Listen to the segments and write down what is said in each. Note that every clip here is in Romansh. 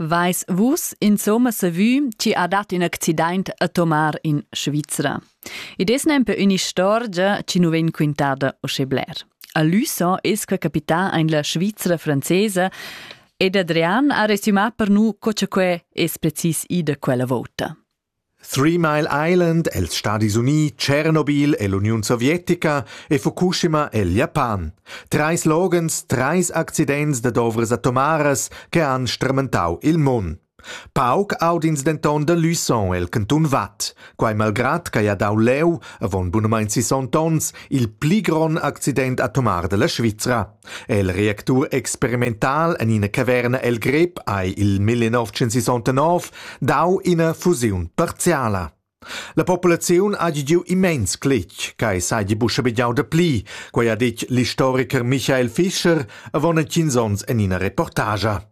Veis vus insomma savü chi ha dat ün accidaint a tomar in Svizra? Id es nempe ün'istorgia chi nu vegn quintada uschè bler. A Luçon es que capità aint la Svizra francesa ed Adrian ha resümà per nu co cha que es precis ida quella vouta. Three Mile Island els Stadis Unii, Tschernobyl e l'Uniun sovietica e Fukushima el Japan. Trais loghens, trais accidents dad ovras atomaras che han stramentau il mund. Pauc aud'ins denton da Luçon el cantun Vad, quai malgrat ch'ei ha dau leu, avon bunamein sisont onns, il pli grond accident atomar dalla Svizra. è il reactur experimental en ina caverna el grep hai il 1969 dau ina fusiun parziala. La populaziun ha giu immens cletg, quai seigi buca bigiau da pli, quei ha detg l'historiker Michael Fischer avon tschins onns en ina reportagia.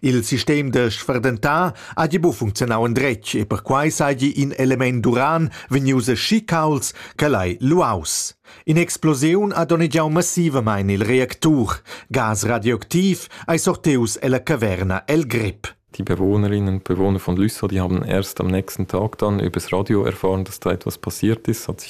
Il sistem da sfurdentar hagi buc funzionau endretg e perquei seigi in element d'uran vegnius aschi caulds ch'el ei luaus. In'explosiun ha donnegiau massivamein il reactur. Gas radioactiv ei sortius ella caverna el grip. Die Bewohnerinnen und Bewohner von Lüsser, die haben erst am nächsten Tag dann übers Radio erfahren, dass da etwas passiert ist, hat sich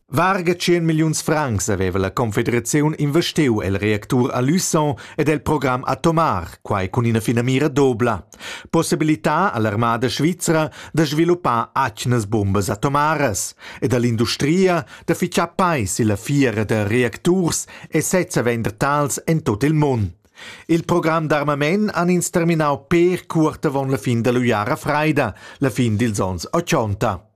Varga tschien milliuns francs haveva la confederaziun investiu el reactur a Luçon ed el program atomar, quai cun ina finamira dobla: possibilitar all'armada svizra da sviluppar atgnas bumbas atomaras ed all'industria da fixar peis illa fiera da reacturs e sezza vender tals en tut il mund. Il program d'armament han ins terminau pér cuort avon la fin dall'uiara freida, la fin dils onns ochonta.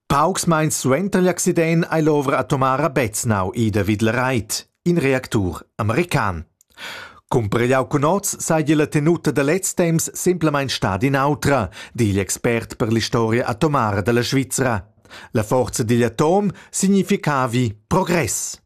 Paucs meins suenter l'accident ei l'ovra atomara Beznau ida vid la reit, in reactur american. Cumpregliau cun oz seigi la tenuta da lez temps semplamein stada in'autra, di igl expert per l'istoria atomara dalla Svizra. La forza digl atom significavi progress.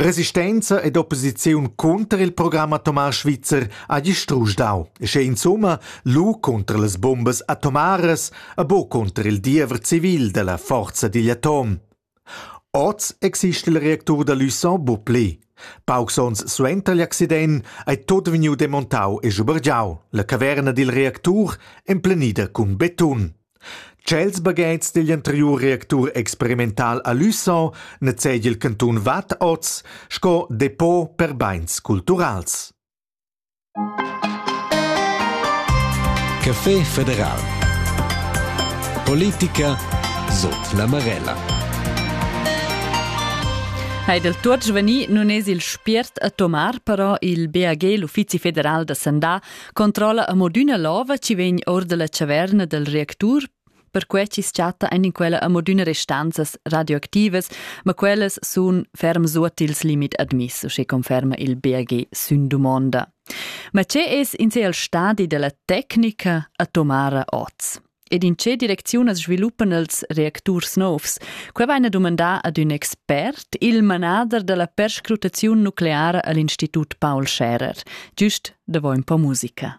Resistenza ed opposiziun cunter il program atomar svizzer ha distrusch dau, e sche insumma lu cunter las bombas atomaras e buca cunter il diever civil dalla forza digl atom. Oz exista il reactur da Luçon bu pli. Paucs onns suenter l'accident ei tot vegniu demontau e schubergiau. La caverna dil reactur emplenida cun betun. Tschels baghetgs digl anteriur reactur experimental a Luçon nezegia il cantun Vad oz sco depot per beins culturals. Café federal. Politica sot la Marella. Ha del tuot sveni nun es il spiert a tomar però il BAG, l'Uffizi federal da sandà, Controlla a modüna lova chi vegn or dalla chaverna del reactur perquai chi's chatta in quella amodüna restanzas radioactivas, ma quellas sun ferm suot ils limit admiss, sche conferma il BAG sün dumonda. Ma che es in se al stadi della tecnica atomara oz? Ed in tge direcziun as sviluppan els reacturs novs? Quai vaina dumandà ad ün expert, il manader da la perscrutaziun nucleara a l'Institut Paul Scherer, giust davo ün po musica.